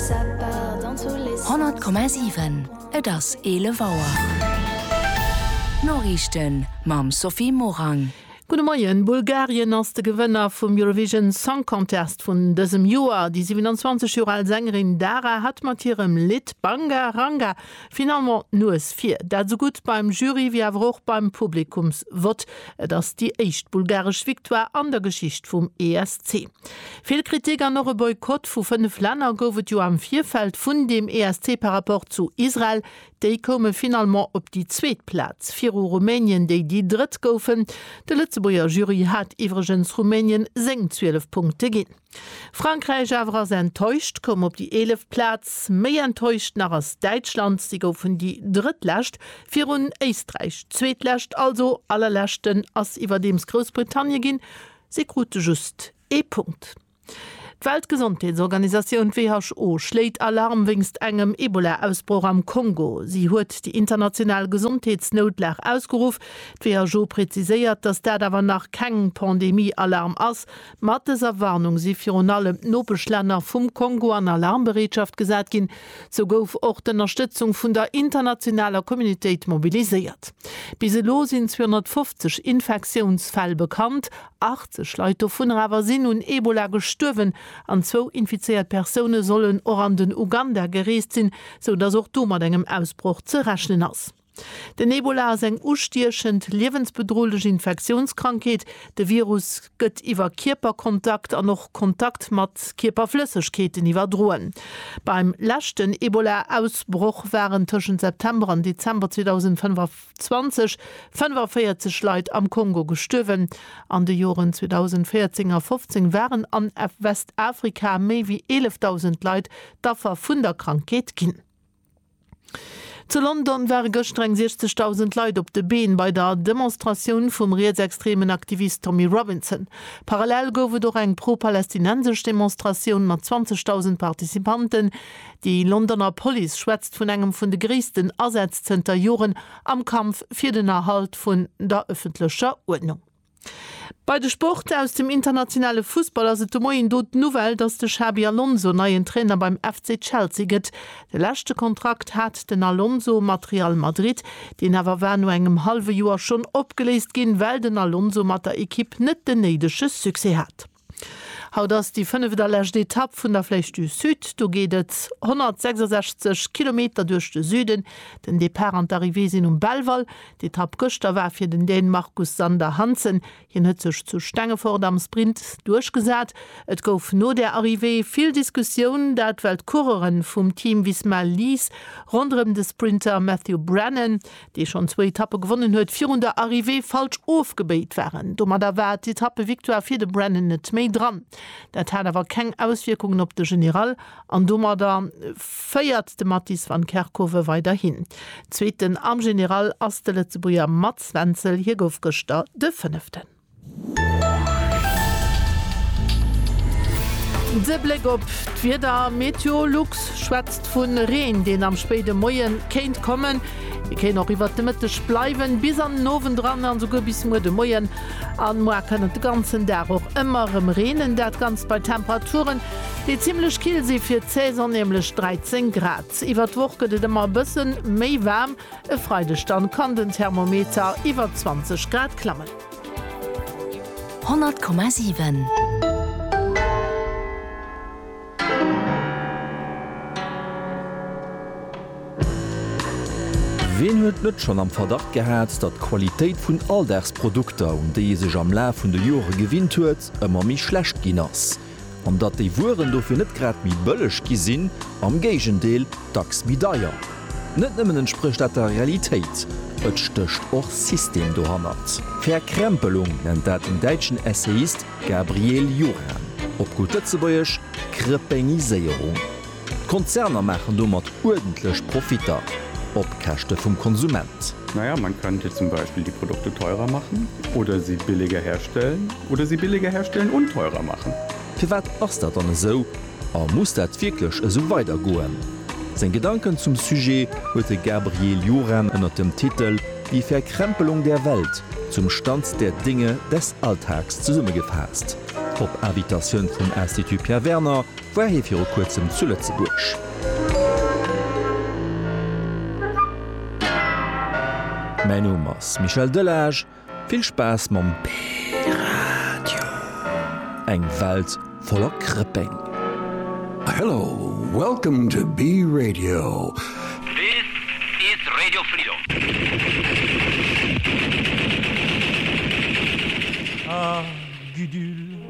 100,7 Et ass 11 Auer. D'Noriichten mam Sophie Morang. Gudde Moien. Bulgarien ass de Gewënner vum Eurovision Song Contest vun dësem Joer. Déi 27 Joer al Sängerin Dara hat mat hirem Lidd Banga Ranga Finalement d'Nues vir. Dat esou gutt beim Jury wéi awer och beim Publikumsvott. Et ass déi éischt bulgaresch Victoire an der Geschicht vum ESC. Vill Kritik an och e Boykott vu 5 Länner gouf et jo am Virfeld vun deem ESC par rapport zu Israel. Déi koume finalement op déi zweet Plaz, viru Rumänien, déi déi drëtt goufen. De Lëtzebuerger Jury hat iwwregens Rumänien seng 12 Punkte ginn. Frankräich awer ass enttäuscht, koum op déi eeleft Plaz. Méi enttäuscht nach ass Däitschland, si goufen déi drëttlescht, virun Éisträich. Zweetlescht, also allerleschten, ass iwwerdeems Groussbritannien ginn, si krute just ee Punkt. D'Weltgesondheetsorganisatioun, d'WHO, schléit Alarm wéinst engem Ebola-Ausbroch am Kongo. Si huet déi international Gesondheetsnoutlag ausgeruff. D'WHO preziséiert, datt dat awer nach keng Pandemie-Alarm ass, Mat dëser Warnung si virun allem d'Nopeschlänner vum Kongo an Alarmbereetschaft gesat ginn. Sou gouf och d'Ënnerstëtzung vun der internationaler Communitéit mobiliséiert. Bis elo sinn 250 Infektiounsfäll bekannt, 80 Leit dovunner awer sinn un Ebola gestuerwen an zwou infizéiert Persoune sollen och an den Uganda gereest sinn, sou datt och do mat engem Ausbroch ze rechnen ass. Den Ebola ass eng ustiechend, liewensbedrohlech Infektiounskrankheet. De Virus gëtt iwwer Kierperkontakt an och Kontakt mat Kierperflëssegkeeten iwwerdroen. Beim leschten Ebola-Ausbroch waren tëschent September an Dezember 2025 45 Leit am Kongo gestuerwen. An de Joren 2014 a 15 waren an Westafrika méi wéi 11.000 Leit d'Affer vun der Krankheet ginn. Zu London ware gëschter eng 60.000 Leit op de Been bei der Demonstratioun vum rietsextremen Aktivist Tommy Robinson. Parallel gouf et och eng pro-palästinensesch Demonstratioun mat 20.000 Participanten. Déi Londoner Police schwätzt vun engem vun de gréissten Asätz zënter Joren am Kampf fir den Erhalt vun der ëffentlecher Uerdnung. Bei de Sport aus dem internationale Fussball ass et de Moien do d'Nouvelle, datt de Xabi Alonso neien Trainer beim FC Chelsea gëtt. De leschte Kontrakt hat den Alonso mat Real Madrid, deen awer war no engem hallwe Joer schonn opgeléist ginn, well den Alonso mat der Ekipp net den néidege Succès hat. Haut ass déi fënneft a lescht Etapp vun der Flèche du Sud. Do geet et 166 Kilometer duerch de Süden. Den Depart an d'Arrivée sinn um Belval. D'Etapp gëschter war fir den Dän Marcus Sander Hansen. Hien huet sech zu Stengefort am Sprint duerchgesat. Et gouf no der Arrivée vill Diskussioun, dat well d'Coureuren vum Team Visma Lease ronderëm de Sprinter Matthew Brennan dee schonn zwou Etappe gewonnen huet, virun der Arrivée falsch ofgebéit waren. Domadder war d'Etappe-Victoire fir de Brennan net méi dran. Dat hat awer keng Auswierkungen op de General an domadder féiert de Mattis van Kerkhove weiderhin. Zweeten am General ass de Lëtzebuerger Mats Wenzel, hie gouf gëschter de Fënneften. De Bléck op d'Wieder, Meteolux schwätzt vu Reen, deen am spéide Moie kéint kommen. Dee kéint och iwwert de Mëtteg bleiwen, bis an den Owend eran a souguer bis muer de Moien. An moar kann et de ganzen Dag och ëmmer erëm reenen, dat Ganzt bei Temperaturen, déi zimmlech kill si fir d'Saison, nämlech 13 Grad. Iwwert d'Woch gëtt et ëmmer e bësse méi waarm. E Freideg dann kann den Thermometer iwwer 20 Grad klammen. 100,7. Wien huet net schonn am Verdacht gehat, datt d'Qualitéit vun Alldagsprodukter, un déi ee sech am Laf vun de Jore gewinnt huet, ëmmer méi schlecht ginn ass? an datt déi Wueren dofir net grad méi bëlleg gi sinn, am Géigendeel, dacks méi deier. Net nëmmen entsprécht dat der Realitéit, et stécht och System dohannert. Verkrempelung nennt dat den däitschen Essayist Gabriel Juran, op gutt Lëtzebuergesch, Krëpéngiséierung. D'Konzerner maachen domat uerdentlech Profitter op Käschte vum Konsument. Na ja, man könnte zum Beispiel die Produkte teurer machen oder sie billiger herstellen oder sie billiger herstellen und teurer machen. Firwat ass dat dann esou a muss dat wierklech esou weidergoen? Seng Gedanken zum Sujet huet de Gabriel Juran ënner dem Titel Die Verkrempelung der Welt, zum Stand der Dinge des Alltags zesummegefaasst op Invitatioun vum Institut Pierre Werner, War hie viru kuerzem zu Lëtzebuerg? Mäin Numm ass Michel Delage, vill Spaass mam P-Radio! Eng Welt voller Krëpeng! Hello, welcome to B-Radio. This is Radio Freedom. Ah, Gudule!